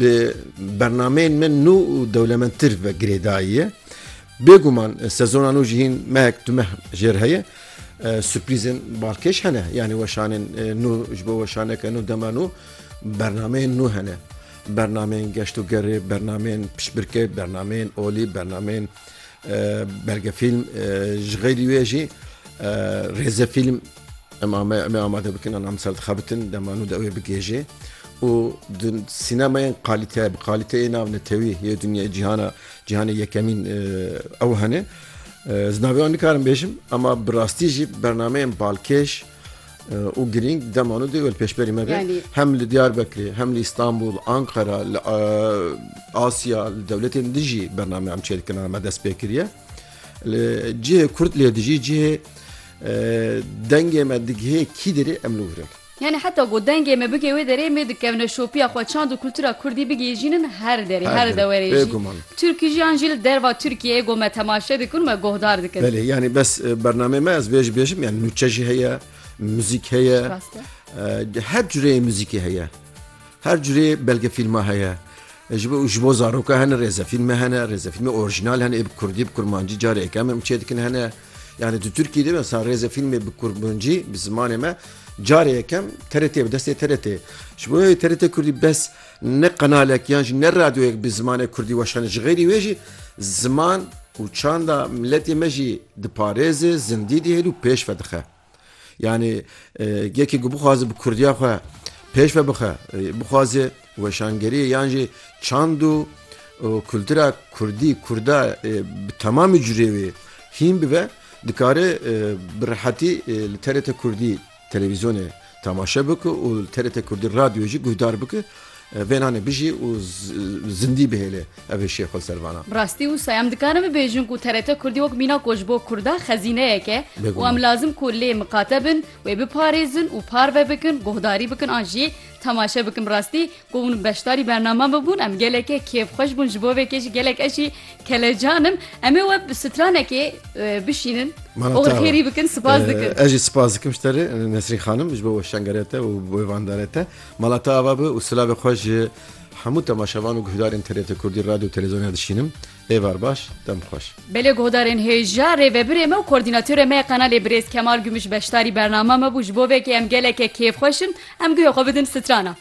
Bi bernameyên me nû û dewlemendtir ve girêdayî ye. Bêguman sezona nû jî hîn mehek du meh jê re heye. Surprîzên balkêş hene. Yanî weşanên nû ji bo weşaneke nû dema nû bernameyên nû hene. Bernameyên geşt û gerê, bernameyên piştbirkê, bernameyên olî, bernameyên belgefîlm ji xeylî wê jî rêzefîlm. Em ame em ê amade bikin an em ser dixebitin dema nû de wê bigêjê û di sînemayên qalîte bi qalîteyê nav netewî yê dinya cîhana cîhanê yekemîn ew hene ez navê wan nikarim bêjim ama bi rastî jî bernameyên balkêş û girîng demano dê wê pêşberî me be hem li Diyarbekirê hem li Îstanbul Ankara li Asya li dewletên dijî bername em çêdikin me dest pê kiriye li cihê Kurd lê dijî cihê Dengê me digihê kî derê em li wir in. Yanî heta ku dengê me bigê wê derê me dikevne şopiya xwe çand û kultura kurdî bigihîjînin her derê, her dewerê jî. Turkî jî an jî li derva Turkiyeyê ku me temaşe dikin û me guhdar dikin. Belê yanî bes bernameyê me ez vê jî bêjim yanî nûçe jî heye, muzîk heye, her cureyê muzîkê heye, her cureyê belgefîlma heye, ji bo ji bo zaroka hene rêzefîlme hene, rêzefîlmê orîjnal hene ê bi kurdî bi kurmancî careke em çê dikin hene. Yani tu Türkiye de mesela rêzê filmê bi Kurmancî bi zimanê me carê yekem TRT bi destê TRT. Ji bo yê TRT Kurdî bes ne qenalek yan jî ne radyoyek bi zimanê Kurdî weşane ji xêrî wê jî ziman û çanda miletê me jî diparêze, zindî dihêl û pêş vedixe. Yanî yekê ku bixwaze bi kurdiya xwe pêş ve bixe bixwaze weşangerî yan jî çand û kultura kurdî kurda bi temamî curê wê hîn bibe dikare bi rehetî li TRT kurdî televîzyonê Temaşe bike û li TRT Kurdî Radyoyê jî guhdar bike. Vênanê bijî û zindî bihêle ev hişê xwe li ser vana. Bi rastî wisa em dikarin bibêjin ku TRT Kurdî wek mîna ku ji bo Kurda xezîneyek e û em lazim ku lê miqate bin, wê biparêzin û parve bikin, guhdarî bikin an jî temaşe bikin. Bi rastî Ku hûn beşdarî bername bibûn em gelekê kêfxweş bûn ji bo vê kê jî gelek ez jî kelecan im. Em ê we bi stranekê e, bişînin Mana û te xêrî wa. bikin spas dikin. Eh, Ez jî spas dikim ji te re eh, Nesrîn xanim ji bo wê şengerê te û wê vandarê te. Mala te ava bi û silavê xwe ji hemû temaşevan û guhdarên TRT Kurdî radyo û televîzyonê dişînim. Êvar baş, dem xweş. Belê guhdarên hêja rêvebirê me û koordînatörê me ya kanalê birêz Kemal Gümüş beşdarî bername me bû ji bo vê kê em gelekê kêfxweş in em guhê xwe bidin strana.